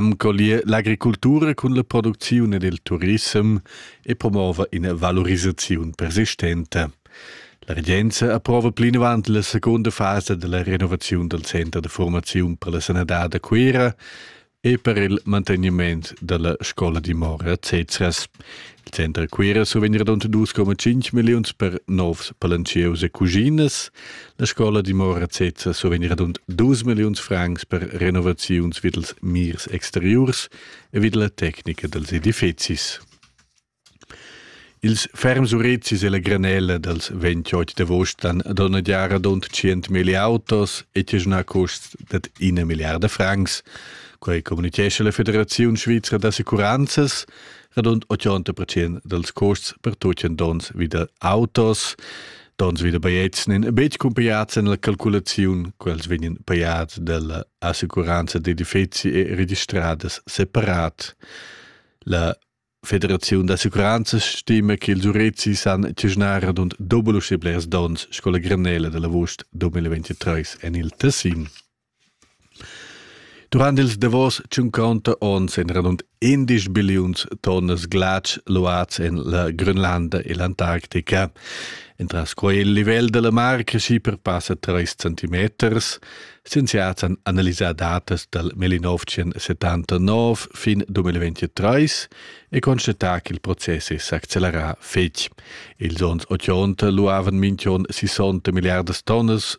am collier l'agricultura cun la producziun ed il turissem e promova ina valorisaziun persistenta. La regenza approva plinavant la seconda fasa della renovazione del center de formazione per la sanadad a Cuira e per il manteniment della scola di Mora, etc. Center Cuira survegn radund 2,5 milliuns per novs palantschieus e cuginas. La scola dimora sezza survegn radund 2 milliuns francs per renovaziuns vid els mirs exteriurs e vid la tecnica dels edifizis. Ils ferms urezis e la granella dals 28 d'agost han donadià radund 100.000 autos e tiagnà custs dad ina milliarda francs. Quai communitgescha la Federaziun svizra d'assicuranzas. radund 80% dals costs per tutgen dons vida autos. Dons vida baiets nin betg cumpaiats en la calculaziun, quels vegnan paiats dalla assicuranza d'edifizi e registradas separat. La Federaziun d'assicuranza stima che ils Urezis han ciasnar radund dobbel uschè blers dons sco la Grenella dall'avust 2023 en il Tessin. Durant ils davos tschunconta onns ein radund indesch billiuns tonnas glatsch luads en la Grönlanda e l'Antarctica. Entras quei il livel dalla mar cresci per passa treis centimeters. Scienziats han analisà datas dal 1979 fin 2023 e constatà ch'il process è s'accelerà fetg. Ils onns 80 luavan minch'on 60 milliardas tonnas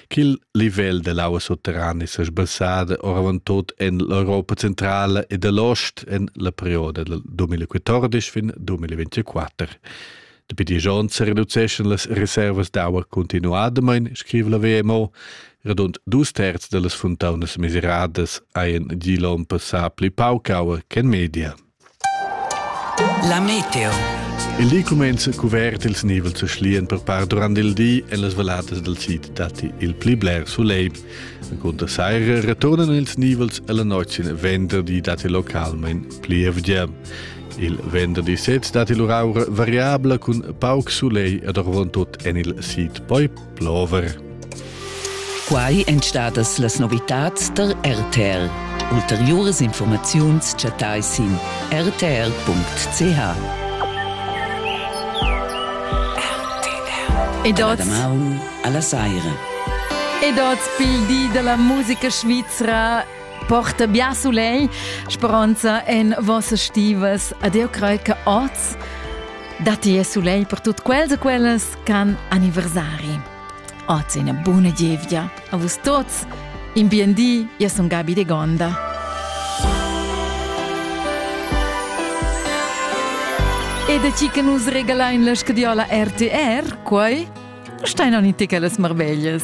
Ch'il livel dell'aua sutterrana sia sbassada oravontut en l'Europa centrala e dell'ost en la perioda dal 2014 fin 2024. Dapi dies onns reduceschan las reservas d'aua continuadamain, scrive la WMO. Radund dus terz da las fontaunas miseradas hajan giu l'onn passà pli pauc aua che en media. La meteo. Il di cumenza cuvert ils nivels a schlien per par durant il di e las valatas dal sid datti il pli bler sulegl. Cunter saira returnan ils nivels e la notg sin venderdi datti localmain plievgia. Il venderdi sez datti lur aura variabla cun pauc sulegl ed orvon tut en il sid. Poi plover. Quai èn stadas las novitads da RTR. Ulteriuras informaziuns chattai sin rtr.ch. Ed oz damaun alla saira. Ed oz pil di della musica svizra porta bien soleil, speranza en vossa stivas. Adeo crei che oz datti il soleil per tutt quels e quellas Can anniversari. Oz ina buna gievgia a vus tuts. In bien di, io sono Gabi De Gonda. E da chi che nus regala in la scadiola RTR, quai? Stai non in ticas marveglias.